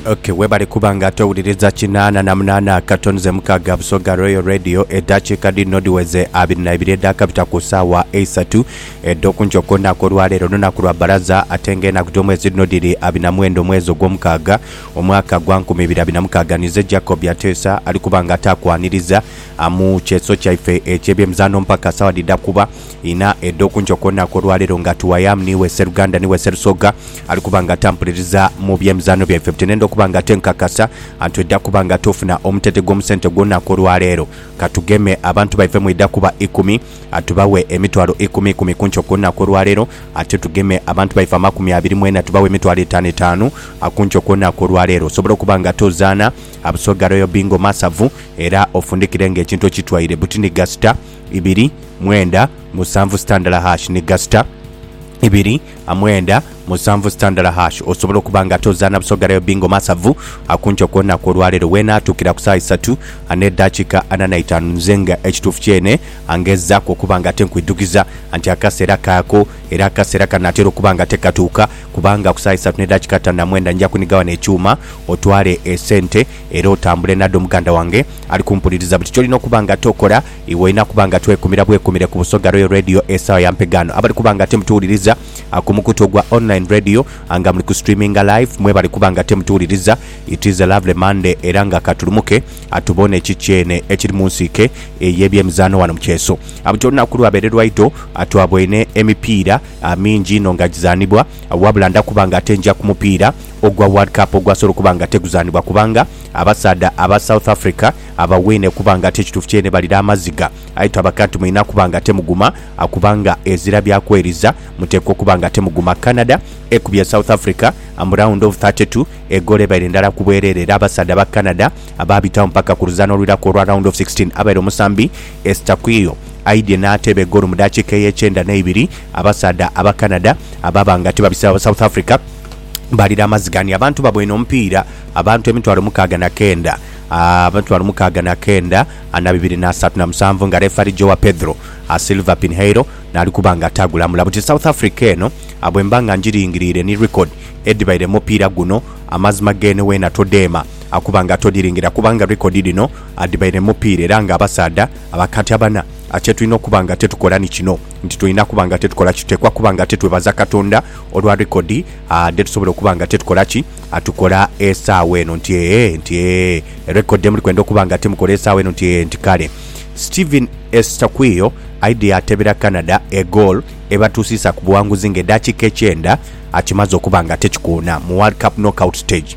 Okay, webale kuba nga ate owuliriza kinaana na munaana akato nze mukaaga Busoga Royal Radio eddakiika dhino dhiweze abiri na ibiri edhaakabita ku ssaawa eisatu edh'okunkyo kw'olunaku olwaleero olunaku lwa bbalaza ate nga enaku dh'omwezi dhino dhiri abiri na mwenda omwezi ogw'omukaaga omwaka gwa nkumi ibiri abiri na mukaaga nize Jacob Yateesa ali kuba nga ate akwaniriza ah, mu kyeso kyaife eky'ebyemizaano mpaka ssaawa dhidha kuba Inha edho kunco kwona kwo lwaleero nga tuwayamu niiwe sseruganda niiwe sserusoga ali kuba nga tampuliriza mu by'emizaano byaife bute nenda okuba nga tenkakasa antweda kuba nga tufuna omutete gw'omusente gwona kwo lwaleero katugeme abantu baife mwidha kuba ikumi atubawe emitwalo ikumi ikumi kunco kwona kwo lwaleero ate tugeme abantu baife amakumi abiri mwena tubawe emitwalo etaano etaano kunco kwona kwo lwaleero osobole okuba nga tozaana Busoga Royal Bingo Masavu era ofundikire nga ekintu okitwaire buti ni gasita ibiri, mwenda, musanvu sitandala hash ni gasita ibiri, amwenda, musanvu sitandala hash osobola okuba nga ate ozaana Busoga Rail Bingo Masavu akunce ku lunaku olwaleero weenaatukira ku saa isatu n'eddakiika ana na itaanu nze nga ekituufu kyene angezaaku okuba nga ate nkwidhukiza nti akaseera kaako era akaseera kano atera okuba nga ate katuuka kubanga ku saa isatu n'eddakiika ttaano na mwenda nja kuniga wano ekyuma otwale esente Era otambule nadho muganda wange ali kumpuliriza, buli kyolina okuba nga ate okola iwe olina kuba nga ate wekumira bwekumire ku Busoga Royal Radio esawa ya mpegaano. Abali kuba nga ate mutuwuliriza ku mukutu ogwa online radio nga muli ku streaminga live mwebale kuba nga ate mutuwuliriza. It is a lovely Monday era nga katulumuke tuboone ki kyene ekiri mu nsiike ey'ebyemizaano wano mu kyeso. Buli kyolina kulwa beere lwaido twaboine emipiira. mingi inho nga gizaanibwa wabula ndakuba nga ate nja ku mupiira ogwa World Cup ogwasobola okuba nga ate guzaanibwa kubanga abasaadha aba South Africa abaweine kuba nga ate ekituufu kyeene balira amaziga aye twabaka nti mulina kuba nga ate muguma kubanga ezira bya kweriza muteekwa okuba nga ate muguma. Canada ekubye South Africa mu round of thirty two egoolo ebaire ndala ku bwereere era abasaadha aba Canada baabitagho mpaka ku luzaano olwiraku olwa round of sixteen abaire omusambi Estaquio aidhie n'ateeba egoolo mu daakiika ey'ekyenda n'eibiri. Abasaadha aba Canada abaaba nga tibabise aba South Africa baalira amaziga ni abantu babwene omupiira abantu emitwalo mukaaga na kenda emitwalo mukaaga na kenda na bibiri na asatu na musanvu nga refari Joao Pedro Silva Pinheiro n'ali kuba nga atagulamula buti South Africa eno. Bwe mba nga ngiringiriire ni record edhibaire mu mupiira guno, amazima geene weena todheema kuba nga todhiringira kubanga record dhino adhibaire mupiira era nga abasaadha abakatyabana a kyetulina okuba nga tetukola ni kino nti tulina kuba nga tetukola ki tuteekwa kuba nga tetwebaza Katonda olwa rekodi a dhetusobola okuba nga tetukola ki a tukola esaawa eno nti ee nti ee rekodi dhemuli kwenda okuba nga temukola esaawa eno nti ee nti kale Steven Eustáquio aidhie atebera Canada egoal ebatuusiisa ku buwanguzi nga edakiika ekyenda akimaze okuba nga tekikoona mu World Cup Knockout Stage.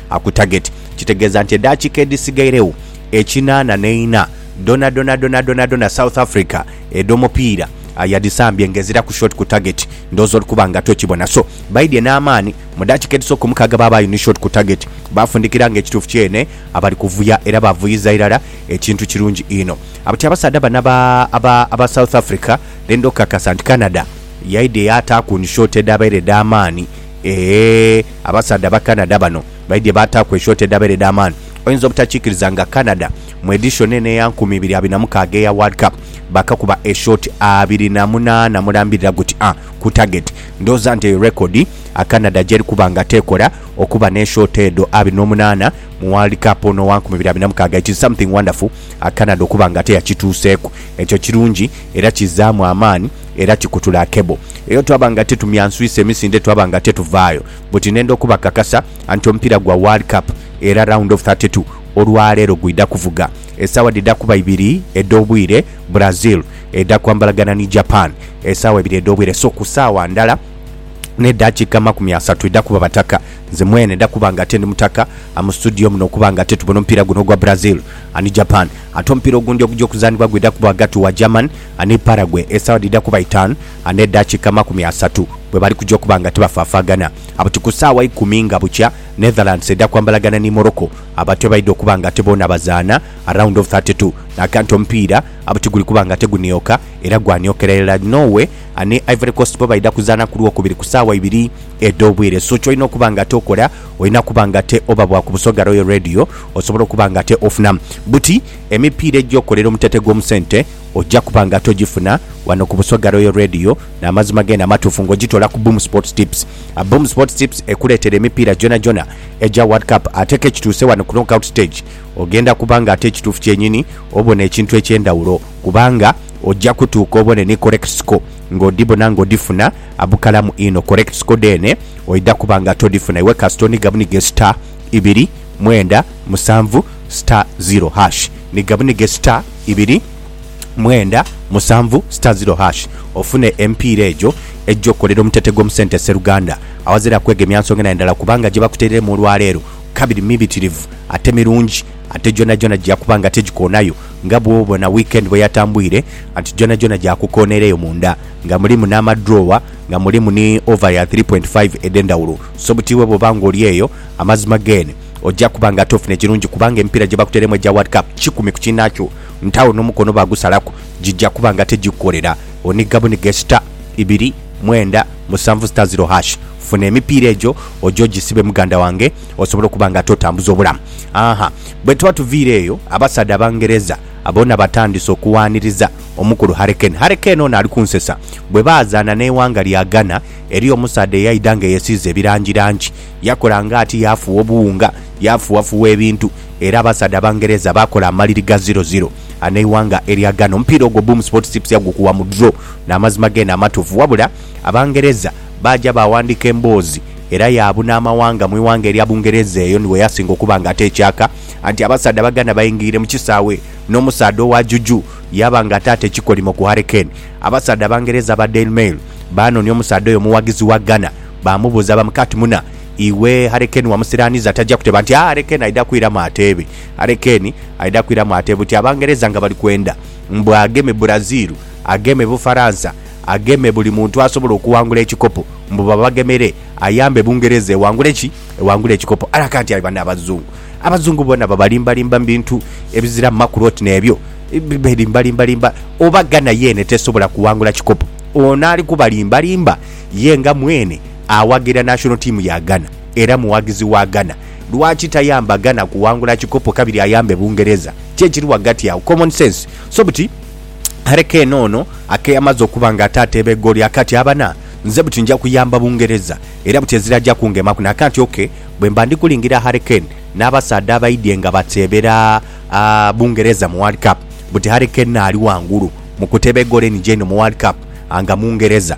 A ku tageti, kitegeeza nti edaakiika edhisigaireu ekinaana n'eina dhonadhona dhonadhonadhona South Africa edh'omupiira yadhisambye ng'eziraku shot ku tageti. Ndhooza oli kuba nga tokibona. So, baidhye n'amaani mu daakiika edhisooka ku mukaaga baabaayo ni shot ku tageti. Baafundikira ng'ekituufu kyene abali kuvuya era baavuyiza irala ekintu kirungi inho. Ti abasaadha bano aba aba South Africa, then ndhokakasa nti Canada yaidhye yaataaku ni shot edhaabaire edh'amaani. Eehh abasaadha aba Canada bano baidhye baataaku eshort edhabeera edh'amaani. Oyinza obutakikiriza nga Canada mu edition eno eya nkumi ibiri abiri na mukaaga eya World Cup baakakuba eshort abiri na munaana mulambirira guti a ku target. Ndhooza nti eyo record a Canada gyeri kuba nga teekola okuba n'eshort edho abiri n'omunaana mu World Cup ono owa nkumi ibiri abiri na mukaaga. It is something wonderful a Canada okuba nga teyakituuseeku. Ekyo kirungi era kizaamu amaani Era tikutula cable eyo twaba nga titumyanswisa emisinde twaba nga tetuvaayo buti nenda okubakakasa anti omupiira gwa World Cup era round of thirty two olwaleero gwidha kuvuga esaawa dhidha kuba ibiri edh'obwire Brazil edha kwambalagana ni Japan esaawa ibiri edh'obwire so ku saawa ndhala ne dakiika amakumi asatu idha kuba bataka nze mwene ndha kuba nga ate ndi mutaka mu studio muno okuba nga ate tubona omupiira guno ogwa Brazil and Japan ate omupiira ogundi ogugya okuzanhibwa gwidha kuba ghagati wa German Ani Paraguay esawa dhidha kuba itaanu ane dakika amakumi asatu bwebali kuja okuba nga tibafafaagana buti ku saawa ikumi nga bukya Netherlands edha kwambalagana ni Morocco abatu ebaidha okuba nga ate boona bazaana round of thirty two naka nti omupiira buti guli kuba nga tegunioka era gwaniokera irala Norway ani Ivory Coast bo baidha kuzaana ku lwokubiri ku saawa ibiri edhobwire so kyolina okuba nga ate okola olina kuba nga ate oba bwa ku Busoga Royal Radio osobola okuba nga ate ofunamu buti emipiira ejokolera omutete gwomusente Oja kuba nga togifuna wano ku Busoga Royal Radio n'amazima gene amatuufu nga ogitoola ku Boom Sports Tips. Boom Sports Tips ekuleetera emipiira gyonagyona egya World Cup ate k'ekituuse wano ku Knockout Stage ogenda kuba nga ate ekituufu kyenyini obona ekintu eky'endhawulo kubanga oja kutuuka obone ni correct score nga odhibona nga odhifuna bukalamu inho. Correct score dheene oidha kuba nga todhifuna iwe kasita oniga bunige star ibiri mwenda musanvu star zero hash. Niga bunige star. ibiri mwenda musanvu star ziro hash ofune emipiira egyo egya okukolera omutete gw'omusente sseruganda awazira kwegemya nsonga na ndala kubanga gyebakutereiremu olwaleero kabiri mibitirivu ate mirungi ate gyonagyona gyakuba nga tegikoonayo nga bwobona weekend bweyatambwire anti gyonagyona gyakukoona era eyo munda nga mulimu n'amadrawer nga mulimu ni over ya three point five edhendawulo so butiibwa bwoba nga oli eyo amazima gen. Oja kuba nga tofune kirungi kubanga emipiira gye bakuteiremu egya World Cup kikumi ku kiinhaakyo nti agho n'omukono baagusalaku, gija kuba nga tegikukolera. Oniga buniga e star, ibiri, mwenda, musanvu star zero hash. Funa emipiira egyo oje ogisibe muganda wange osobole okuba nga ate otambuza obulamu. Aah! Bwe tuba tuviire eyo, abasaadha Abangereza boona batandise okuwaaniriza omukulu Harry Kane. Harry Kane ono ali kunsesa. Bwe baazaana n'eighanga lya Ghana, eriyo omusaadha eyaidha nga eyesiize ebirangirangi. Yakola nga ati, yaafugha obuwunga, yaafughafuugha ebintu, era abasaadha Abangereza baakola amaliri ga ziro ziro an'eighanga erya Ghana. Omupiira ogwo Boom Sports Tips yagukuwa mu draw. N'amazima geene amatuufu. Wabula, Abangereza baaja baawandiika emboozi era yaabuna amawanga mu ighanga erya Bungereza eyo ni we yasinga okuba nga ateekyaka anti abasaadha Abaganda baingire mu kisaawe n'omusaadha owa Juju yaaba nga ataata ekikolimo ku Harry Kane. Abasaadha Abangereza aba Daily Mail baanonia omusaadha oyo omuwagizi wa Ghana Baamubuuza bamukati, Muna, iwe Harekeni wamusiraaniza taja kuteba nti, Aa, Harekeni aidha kwiramu ateebe. Harekeni aidha kwiramu ateebe buti Abangereza nga bali kwenda mbu ageme Brazil, ageme Bufaransa, ageme buli muntu asobola okuwangula ekikopo, mbu babagemere ayambe Bungereza ewangule ki? Ewangule ekikopo. Haraka nti, Aye banno Abazungu, Abazungu bona babalimbalimba mu bintu ebiziramu makulu oti n'ebyo. Beelimbalimbalimba. Oba Ghana yeene tesobola kuwangula kikopo, ono ali kubalimbalimba? Ye nga mwene awagira national team ya Ghana era mughagizi wa Ghana, lwaki tayamba Ghana kuwangula kikopo kabiri ayambe Bungereza? Ki ekiri ghagati agho? Common sense. So buti Harry Kane ono akeyamaze okuba nga ate ateeba egooli akati abana, nze buti nja kuyamba Bungereza era buti ezira aja kungemaku nakanti. Ok, bwemba ndi kulingira Harry Kane n'abasaadha abaidhye nga bateebera Bungereza mu World Cup, buti Harry Kane ali ghangulu mu kuteeba egooli enigya einho mu World Cup nga Mungereza.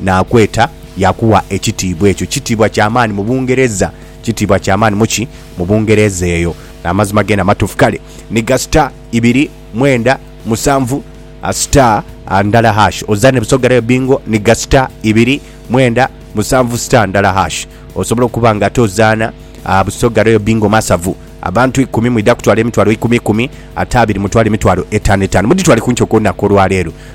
naakweta Yakuwa ekitiibwa. Ekyo kitiibwa kya maani mu Bungereza. Kitiibwa kya maani mu ki? Mu Bungereza eyo. Amazima gene amatuufu. Kale, ni ga star ibiri, mwenda, musanvu, star, ndala hash. Oza ne busoga rayo bingo, ni ga star ibiri, mwenda, musanvu, star, ndala hash. Osobola okuba nga ate ozaana busoga rayo bingo masavu. Abantu ikumi mwidha kutwala emitwalo ikumi ikumi, ate abiri mutwale emitwalo etaano etaano. Mudhitwale ku nti okw'olunaku olwa leero.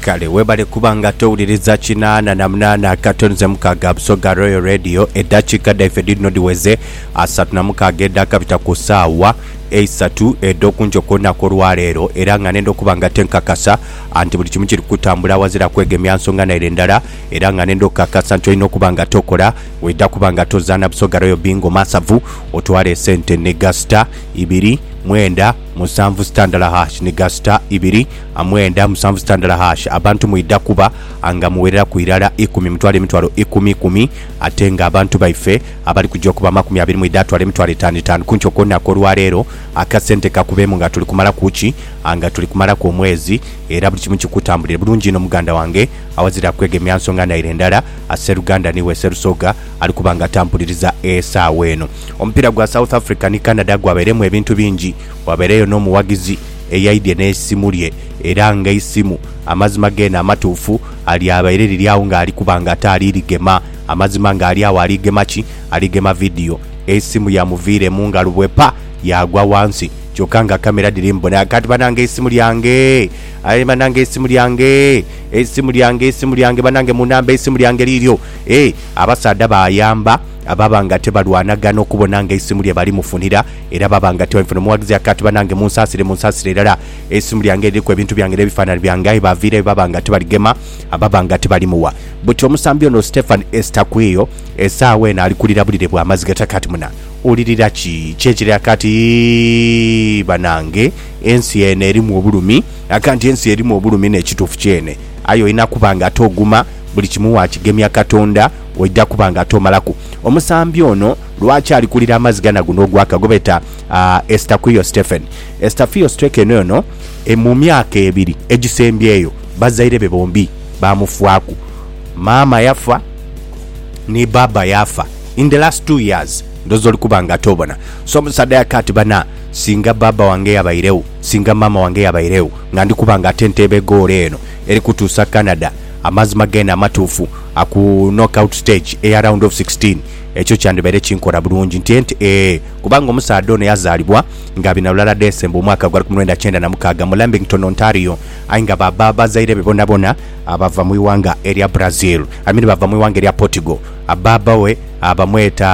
Kale webale kuba nga towuliriza kinaana na munaana akato nze mukaaga Busoga Royal Radio. Eddakiika dhaife dhidhino dhiweze asatu na mukaaga edhakabita ku saawa eisatu edh'oku nkyo ku lunaku olwaleero era nga nenda okuba nga te nkakasa anti buli kimu kiri kutambula awazira kwegemya nsonga naire ndala era nga nenda okukakasa nti olina okuba nga tokola weidha kuba nga tozaana Busoga Royal Bingo Masavu otwale esente ne gasita ibiri mwenda musanvu sitandala hash ni gasita ibiri mwenda musanvu sitandala hash abantu mwidha kuba nga muwereraku irala ikumi mutwale emitwalo ikumi ikumi ate nga abantu baife abali kuja okuba amakumi abiri mwidha atwale emitwalo etanu etanu kuntyo kwonaku olwaleero akasente kakubemu nga tuli kumalaku ki nga tuli kumalaku omwezi era buli kimu kikutambulire bulungi inho muganda wange awazira kwegemya nsonga naire ndala seruganda niwe serusoga ali kuba nga atampuliriza esaawa eno. Omupiira gwa South Africa ni Canada gwabairemu ebintu bingi, wabaireyo n'omughagizi eyaidhye n'eisimu lye era ng'eisimu amazima geene amatuufu alyabaire liri agho ng'ali kuba nga ate ali ligema. Amazima ng'ali agho ali gema ki? Ali gema vidiyo. Eisimu yamuviiremu nga lubwe pa! Yaagwa ghansi kyokka nga kamera dhiri mu bonha. Kati banange eisimu lyange! Aye banange eisimu lyange! Eisimu lyange, eisimu lyange banange munambe eisimu lyange liiryo. Eeh! Abasaadha baayamba. ababa nga tibalwanagana okubona nga eisimu lye balimufunira era baba nga tibabifunira. Omughagizi yaka ati, Banange munsaasire, munsaasire irala. Eisimu lyange liriku ebintu byange n'ebifaananhi byange, aye baaviirayo baba nga tibaligema, ababa nga tibalimuwa. Buti omusambi ono Stephan Estakwiyo esaawa eno ali kulira bulire bwa maziga. Yaka ati, Muna wulirira ki? Ki ekiri? Yaka ati, Yii banange ensi eno erimu obulumi. Yaka nti, Ensi erimu obulumi n'ekituufu kyene, aye olina kuba nga toguma, buli kimu waakigemya Katonda. Oidha kuba nga ate omalaku. Omusambi ono lwaki ali kulira amaziga na guno ogwaka gwebeeta Estaquio Stephen? Estafio Strekeno ono mu myaka ebiri egisembyeyo bazaire be bombi baamufwaku. Maama yafa ni baaba yaafa in the last two years ndhooza oli kuba nga ate obona. So omusaadha yaka ati bana singa baaba wange yabairegho, singa maama wange yabairegho nga ndi kuba nga ate nteebe egoolo eno eri kutuusa Canada. Amazima geene amatuufu a ku knockout stage eya round of sixteen, ekyo kyandibaire kinkora bulungi ntye nti ee kubanga omusaadha ono yazaalibwa nga Binalulala Desemba omwaka gwa lukumi lwenda kyenda na mukaaga mu Lambington, Ontario aye nga baba bazaire be bonabona bava mu ighanga erya Brazil I mean bava mu ighanga erya Portugal. Baba we bamweta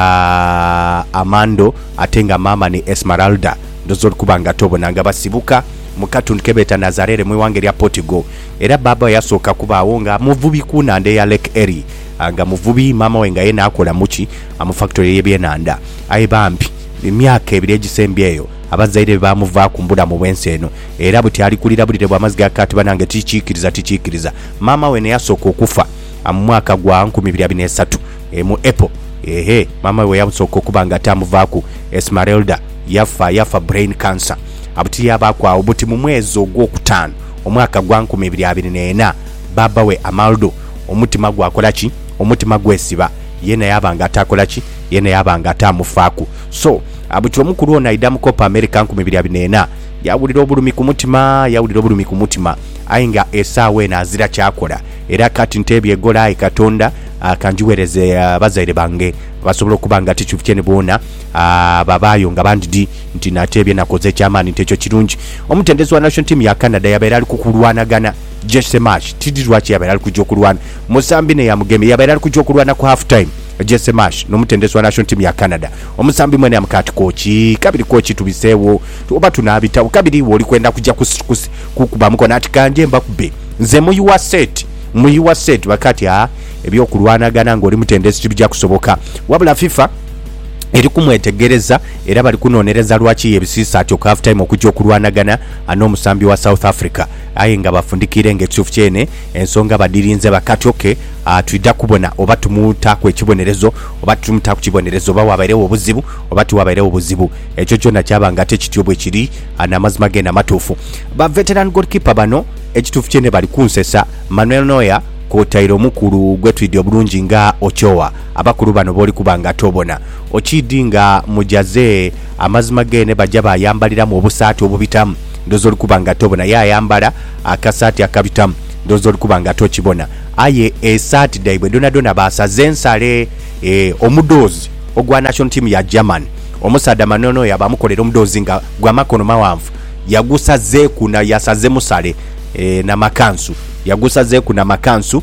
Armando ate nga maama ni Esmeralda. Ndhooza oli kuba nga tobona nga basibuka mu katundu ke beeta Nazarere mu ighanga erya Portugal. Era baaba we yasooka kubaagho nga muvubi ku nhandha eya Lake Erie. Nga muvubi, maama we nga ye naakola mu ki? Mu fakitori ey'ebyenhandha. Aye bambi, mu myaka ebiri egisembyeyo, abazaire be baamuvaaku mu bulamu bw'ensi eno. Era buti ali kulira bulire bwa maziga ati, Banange, tikiikiriza, tikiikiriza! Maama we n'eyasooka okufa mu mwaka gwa nkumi ibiri abiri n'esatu, mu April. Ehe, maama we bwe yasooka okuba nga tamuvaaku, Esmeralda yafa, yafa brain cancer. Buti yaabaaku agho buti mu mwezi ogwokutaanu. Omwaka gwa nkumi ibiri abiri n'ena, baaba we Amaldu, omutima gwakola ki? Omutima gwesiba. Yeena yaaba nga ataakola ki? Yeena yaaba nga ataamufaaku. So, butyo omukulu ono aidha mu Copa America nkumi ibiri abiri n'ena, yaawulira obulumi ku mutima, yaawulira obulumi ku mutima, aye nga esaawa eno azira ky'akola. Era kati nteebyegola, aye Katonda ka ngigheereze abazaire bange basobole okuba nga ti kivukye ni boona, babaayo nga bandi di. Nti nateebye nakoze eky'amaani nti ekyo kirungi. Omutendesi wa national team ya Canada yabaire ali ku kulwanagana, Jesse Marsch, tidhi lwaki yabaire ali kuja okulwana. Musambi naye amugemye, yabaire ali kuja okulwana ku half time, Jesse Marsch n'omutendesi wa national team ya Canada. Omusambi mwene yamukaa ati kooki, kabiri kooki tubiseegho oba tunaabitagho, kabiri iwe oli kwenda kuja kukuba mukono ati kangye mbakube nze mu your set, mu your set. Bakaa ati aa, eby'okulwanagana ng'oli mutendesi tibija kusoboka. Wabula FIFA. eri kumwetegereza era bali kunhonhereza lwaki yebisiisa atyo ku half time okugya okulwanagana n'omusambi wa South Africa aye nga bafundikiire nga ekituufu kyene ensonga badhirinze bakatyoke twidha kubona oba tumutaaku ekibonerezo oba titumutaaku kibonerezo oba waabairegho obuzibu oba tiwabairegho buzibu ekyo kyona kyaba nga ate kityo bwekiri n'amazima geene amatuufu. Ba veteran goalkeeper bano ekituufu kyene bali kunsesa, Manuel Neuer kwotaire omukulu gwetwidhi obulungi nga Ochoa. Abakulu bano b'oli kuba nga tobona, okiidhi nga mujaze amazima geene baja baayambaliramu obusaati obubitamu, ndhooza oli kuba nga tobona. Ye ayambala akasaati akabitamu, ndhooza oli kuba nga tokibona. Aye esaati dhaibwe dhonadhona baasaze nsale. Ee, omudhoozi ogwa national team ya German, omusaadha manono oyo abamukolera omudhoozi nga gwa makono maghanvu, yagusazeeku na yasaze musale, ee, na makansu. Yagusazeeku na makansu.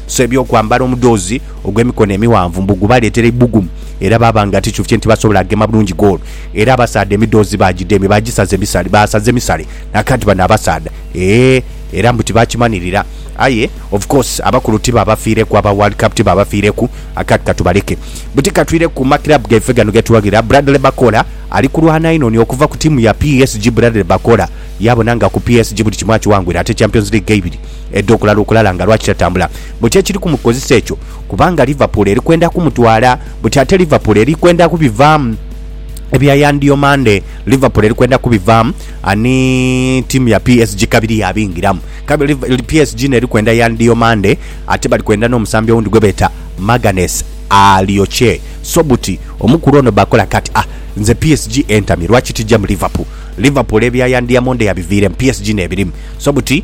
So eby'okwambala omudhoozi ogw'emikono emighanvu mbu gubaleetera eibugumu, era baaba nga ti kyufye nti basobola gema bulungi goolo. Era abasaadha emidhoozi baagidemya, baagisaza emisale, baasaza emisale naaka nti bano abasaadha eeh, era mbu tibaakimanirira. Aye of course abakulu tibaabafiireku, aba World Cup tibaabafiireku, akati ka tubaleke buti ka twire ku ma club gaife gano ge tuwagira. Bradley Bakola ali kulwana inho ni okuva ku tiimu ya PSG. Bradley Bakola yaabona nga ku PSG buli kimu akiwangwire ate Champions League eibiri. Edo kulala okulala nga lwaki tatambula buti ekiri ku mukozesa ekyo kubanga Liverpool eri kwenda ku mutwala buti ate Liverpool eri kwenda ku bivaamu ebya Yan Diomande Liverpool eri kwenda ku bivaamu ani tiimu ya PSG kabiri ya bingiramu kabi PSG neri kwenda Yan Diomande ate bali kwenda n'omusambi owundi gwe beta Maganes Alioche so buti omukulu ono bakola kati ah nze PSG entamye lwaki tijja mu Liverpool Liverpool ebya Yan Diamonde yabiviiremu PSG nebirimu so buti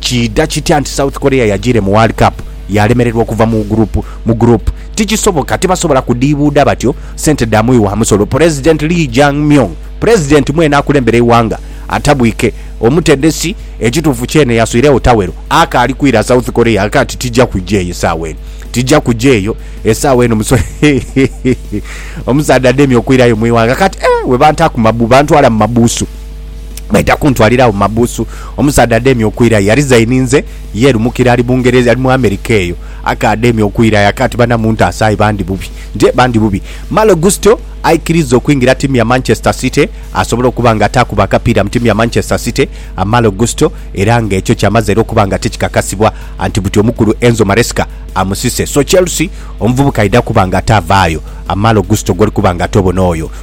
Kiidha kitya nti South Korea yajiire mu World Cup yaalemererwa okuva mu group mu group? Tikisoboka, tibasobola kudhiibuudha batyo sente dha mughi wa musolo. Pulezidenti Lee Jae-myung, Pulezidenti mwene akulembera eighanga atabwike, omutendesi, ekituufu kyene yaswiregho tawero, akaali kwira South Korea aka ti tija kuja eyo esaawa eno, tija kuja eyo esaawa eno muso Omusaadha ademye okwirayo mu ighanga kati, eh, bwe bantaaku mabu, bantwala mu mabuusu. Baidha kuntwalira agho mu mabuusu. Omusaadha adheemye okwirayo yalizaininze ye lumukira ali Bungereza, ali mu America eyo. Aka adheemye okwirayo aka ati, Bana muntaase aye bandi bubi. Nje bandi bubi. Malo Gusto aikiriza okuingira ttiimu ya Manchester City asobole okuba nga ataakuba akapiira mu ttiimu ya Manchester City, Malo Gusto, era nga ekyo kyamaze era okuba nga tikikakasibwa anti buti omukulu Enzo Maresca amusise. So Chelsea omuvubuka aidha kuba nga ataavaayo, Malo Gusto gw'oli kuba nga ate obona oyo.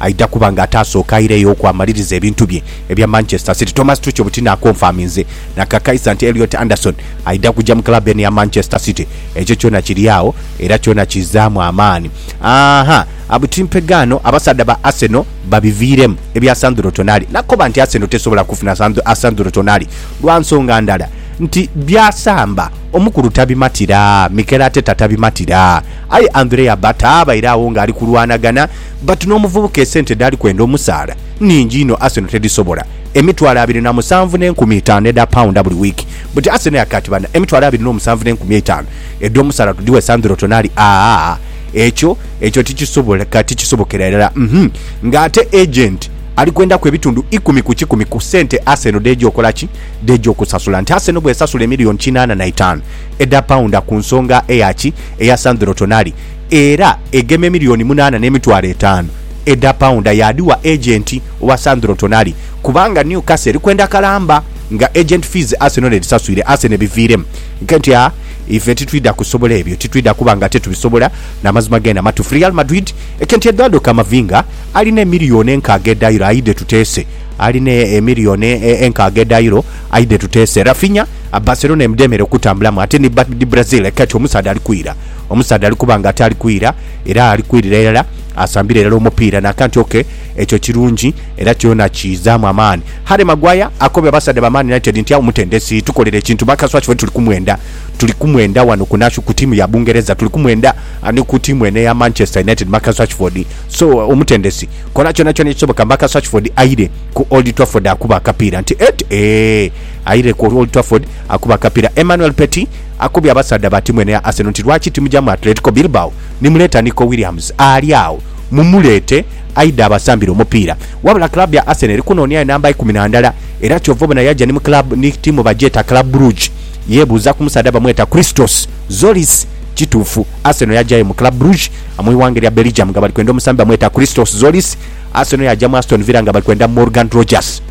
Aidha kuba nga ataasooka aireyo okwamaliriza ebintu bye ebya Manchester City, Thomas Tuchel butinaakonfaminze na kakaisa nti Elliot Anderson aidha kuja mu club eno eya Manchester City. Ekyo kyona kiri agho era kyona kiizaamu amaani. Ahaa, buti mpegaano abasaadha ba Arsenal babiviiremu ebya Sandro Tonali nakoba nti Arsenal tesobola kufuna Sandro Tonali lwa nsonga ndala nti byasamba omukulu tabimatira, Mikel Arteta tabimatira aye Andrea Ba taabaire agho ng'ali kulwanagana But n'omuvubuka esente dhaali kwenda omusaala nhingi inho Arsenal tedhisobola. Emitwalo abiri na musanvu n'enkumi itaanu edha paunda buli wiiki. But Arsenal yakaaba ati, Bana, emitwalo abiri n'omusanvu n'enkumi eitaanu edh'omusaala tudhighe Sandro Tonali? Aah, ekyo, ekyo tikisoboka, tikisobokera irala. Uhmm. Nga ate agent ali kwendaku ebitundu ikumi ku kikumi ku sente Arsenal dh'eja okola ki? Dh'eja okusasula. Nti Arsenal bw'esasula emiliyoni kinaana na itaanu edha paunda ku nsonga eya ki? Eya Sandro Tonali. era egema emiliyoni munaana n'emitwalo etaanu edha paunda yaadhigha agenti owa Sandro Tonali kubanga Newcastle eri kwenda kalamba nga agent fees Arsenal edhisaswire. Arsenal ebiviiremu nke nti, A ife titwidha kusobola ebyo, titwidha kuba nga ate tubisobola n'amazima geene amatuufu. Real Madrid eke nti Eduardo Camavinga alina emiliyoni enkaaga edha euro aidhe tuteese alina emiliyoni enkaaga edha euro aidhe tuteese. Raphinha Barcelona emudheemere okutambulamu ate ni Brazil eke nti omusaadha ali kwira. Omusaadha ali kuba ng'ate ali kwira era ali kwirira irala, asambira irala omupiira n'aka nti, Ok, ekyo kirungi era kyona kiizaamu amaani. Harry Maguire akobye abasaadha ba Man United nti, Agho mutendesi, tukolera ekintu Marcus Rashford tuli kumwenda. Tuli kumwenda ghano ku nasho, ku tiimu ya Bungereza, tuli kumwenda ni ku tiimu eno eya Manchester United, Marcus Rashford. So, omutendesi, kola kyonakyona ekisoboka Marcus Rashford aire ku Old Trafford akube akapiira. Nti, Ed, Eeh, aire ku Old Trafford akube akapiira. Emmanuel Petit. Akobye abasaadha ba tiimu eno eya Arsenal nti, Lwaki timuja mu Atletico Bilbao ni muleeta Nico Williams ali agho? Mumuleete aidhe abasambire omupiira. Wabula club ya Arsenal eri kunoonia ye namba ikumi na ndala era kyova obona yaja ni mu club ni tiimu bagyeta Club Brugge. Yebuuza ku musaadha bamweta Christos Zolis, Kituufu Arsenal yajayo mu Club Brugge mu ighanga erya Belgium nga bali kwenda omusambi bamweta Christos Zolis. Arsenal yaja mu Aston Villa nga bali kwenda Morgan Rogers.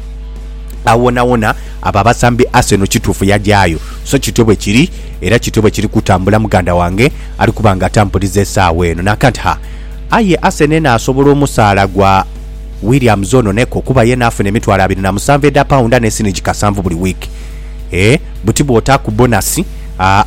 Awonawona. Abo abasambi Arsenal kituufu yagyayo, so kityo bwe kiri, era kityo bwe kiri kutambula muganda wange ali kuba nga atampuliza esaawa eno. Nakant ha, aye Arsenal enaasobola omusaala gwa Williams ono neko kuba yena afuna emitwalo abiri na musanvu edha paunda ne sinigi kasanvu buli wiiki. Ee, buti bw'otaaku bonasi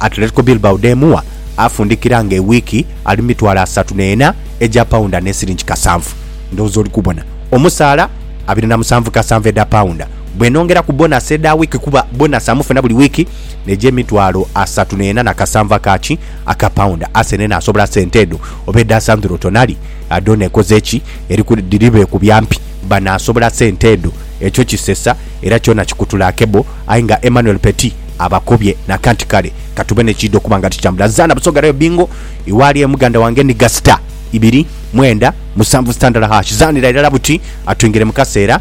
Atletico Bilbao dh'emuwa, afundikira nga ewiiki ali mu mitwalo asatu n'ena egya paunda ne sinigi kasanvu. Ndowooza oli kubona. Omusaala abiri na musanvu kasanvu edha paunda. bwenongera ku bonasi edha wiiki kuba bonasi amufuna buli wiiki n'egya emitwalo asatu n'ena na kasanvu aka ki aka paunda. Arsenal enaasobola sente edho oba edha Sandro Tonali dhona ekoze ki? Eriku dhiri beekubya mpi. Banaasobola sente edho? Ekyo kisesa era kyona kikutula akebo aye nga Emmanuel Petit abakobye nakanti kale katube n'ekiidha okuba nga tikitambula. Nzaana Busoga Rayo Bingo iwe ali e Muganda wange Niga Star ibiri mwenda musanvu sitandala hash zaanira irala buti atwingire mu kaseera.